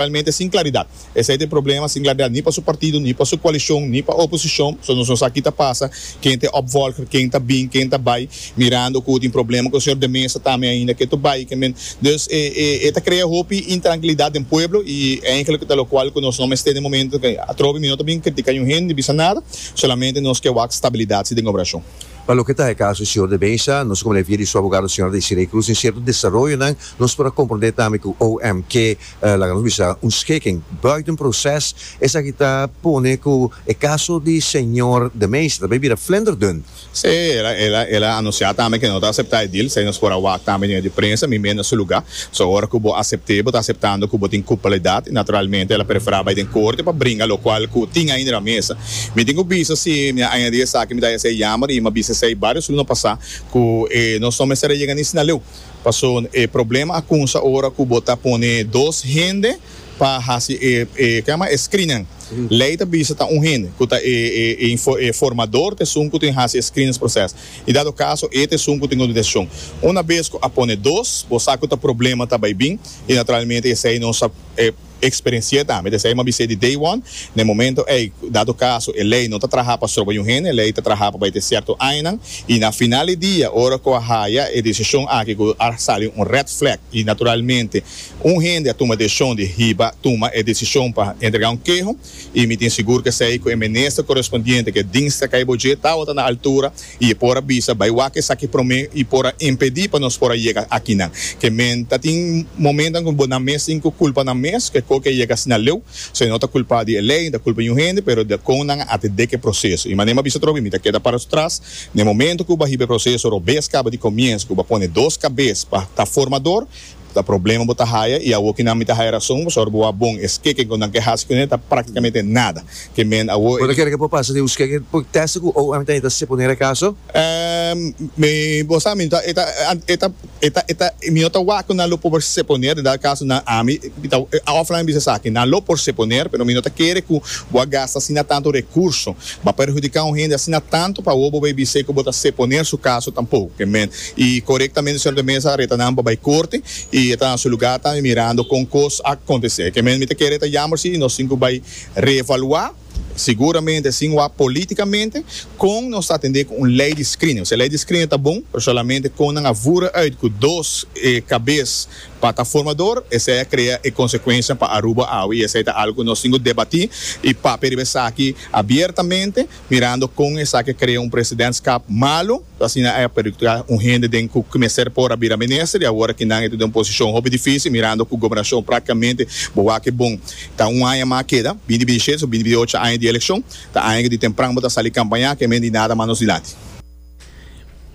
Realmente sin claridad. Esey ta e problema, sin claridad ni pa su partido, ni pa su coalición, ni pa oposición. So nos no sa ki ta pasa, ken ta e opvolger, ken ta bin, ken ta bay, mirando cu tin problema cu señor de Meza tambe ainda ke to bay, ke men. Dus e e e ta crea hopi intranquilidad den pueblo y eigenlijk ta locual cu nos no mester den e momento ke atrobe mi no ta bin critica niun hende ni bisa nada, solamente nos ke wak stabilidad si den gobernacion. Pa loke ta e caso di señor de Meza, nos como le via di su abogado señora Desiree Cruz den cierto desaroyonan nos por a comprende tambe cu OMK, laga nos bisa, un schikking buiten proces, esaki ta pone cu e caso di señor de Meester ta bay bira flinderdun. Sí, el a anuncia tambe que no ta acepta e deal, esaki nos por a wak tambe den e de prensa, mi mende na su lugar. So, ora cu bo acepte, bo ta aceptando cu bo tin culpabilidad y naturalmente el a prefera bay den corte pa bringa locual cu tin ahi riba mesa. Mi tin cu bisa si mi a añadi esaki mi ta haya sido jammer y mi a bisa esaki varios luna pasa cu nos no mester a yega ni Sinaleu. Paso e problema a kunsa ora ku bo ta pone dos hende pa hasi e e screenan. Lei ta bisa ta un hende ku ta e e formador ta esun ku tin hasi e screenans proses i dado kaso e ta esun ku tin un desishon. Una bes ku a pone dos bo sa ku ta problema ta bai bin i naturalmente esei no sa e Experenci'é tambe, ta esei mi a bis'é di day one, n'e momento ei, dado caso e ley no ta traha pa stroba un hende, e ley ta traha pa bai te cierto añanan, y na final di dia, ora cu a haya e decision aki cu a sali un red flag, y naturalmente un hende a tuma e decision di hiba tuma e decision pa entrega un queho, i mi tin sigur ku esei ku e minister korespondiente ku e dingstra kai bo dje tabata na altura i e por a bisa, Bai wak esaki promé i por a impedí pa nos por a yega akinan. Ke men ta tin momentonan ku bo nan mes tin ku kulpa nan mes ku e ko ku a yega asina leu. So e no ta kulpá di e lei ni ta kulpa di un hende, pero di a kon nan a atendé ku e proseso. I manera mi a bisa tropi, mi ta keda para tras na e momentu ku bo a hiba e proseso robes kaba di komiensu, ku bo a pone dos kabes pa ta formador, Ta problema bo ta haya y awo kinan mi ta haya rason pasobra bo a bon. E skeken cu nan ke haci cu nan ta practicamente nada. Ke men awo. Bo ta kere cu bo pasa den un skeken por testa cu OM ta heta seponer e caso? Ehm, mi, bo sa, mi no ta, e ta, e ta, e ta, e ta, mi no ta wak cu nan lo por seponer, den dado caso nan, ami, mi ta, of nan a bisa esaki, nan lo por seponer, pero mi no ta kere cu bo a gasta asina tanto recurso, bo a perhudica un hende asina tanto pa awo bo bay bis'e cu bo ta seponer su caso tampoco. Ke men. Y corectamente señor de mesa a reta nan pa bay corte y e ta na su lugar tambe mirando con cos a contece. Ke men mi ta kere ta jammer si nos tin cu bay reevalua, seguramente sin wak politicamente, con nos ta atende cu un ley di screening. Osea, ley di screening ta bon, pero solamente con nan a vura uit cu dos e cabes pa ta formador, esey a crea e consecuencianan pa Aruba awe y esey ta algo cu nos tin cu debati y papia riba esaki abiertamente, mirando con esaki a crea un presidentschap malo. Ta asina e perjudica un hende den cu mester por a bira minister y awor aki nan e ta den un posicion hopi dificil mirando cu gobernacion practicamente bo wak e bon. Ta un aña mas a keda, binti binti shete so binti binti ocho aña di eleccion, ta aña cu di tempran bo ta sali campaña cu e men di nada mas nos dilanti.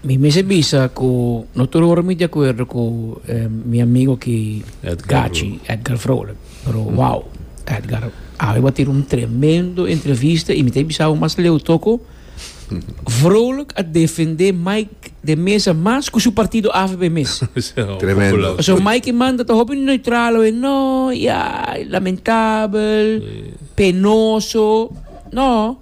Mi mester bisa cu no tur ora mi di acuerdo cu mi amigo aki Gachi, Edgar Vrolijk, pero wow, Edgar awe bo a tira un tremendo entrevista y mi ta bisa awe mas leu toco. Vrolijk a defende Mike de mesa mas cu su partido avp mes. Tremendo. Pasobra Mike manda ta hopi neutral awe, no, ya, lamentabel, penoso. No.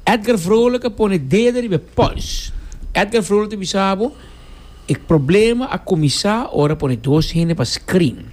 Edgar Vrolijk a pone dedo riba e pols. Edgar Vrolijk ta bisa bo e problema a cuminsa ora pone dos hende pa screen.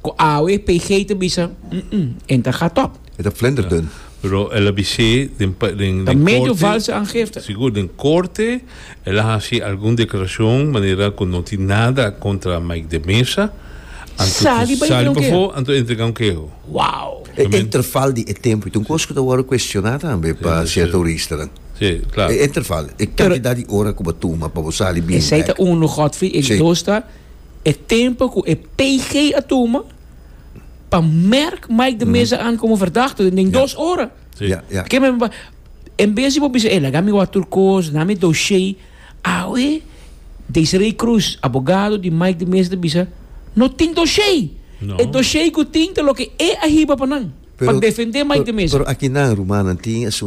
Ku awe PG ta bisa, Umm, en ta gat op. E ta flender dun. Pero el a bis'é den den korte. Ta medio valse aangifte. Sigur, den korte el a hasi algun deklarashon manera ku no tin nada kontra Mike de Meza. Anto ku sali pafó, anto entregá un keho. Wow! E interval di e tempu, i ta un kos ku ta wòrdu kuestioná tambe pa sierto huristanan. Sí, klar. E interval, e kantidat di ora ku bo tuma pa bo sali bien bèk. Esei ta unu, Godfrey. E dos ta. e tempo cu e PG a tuma pa merk Mike de Meza aan como verdachte den yeah. dos ora. Sí. Yeah, yeah. Porque men, en vez de bisa, eh, laga mi water course, na mi dossier, awe, Desiree Cruz, abogado di Mike de Meza, bisa, no tin dossier. No. E dossier cu tin te lo que e ahiba pa nan. Pero, pa defender Mike pero, de Meza. Pero aquí nan, rumana, tin asun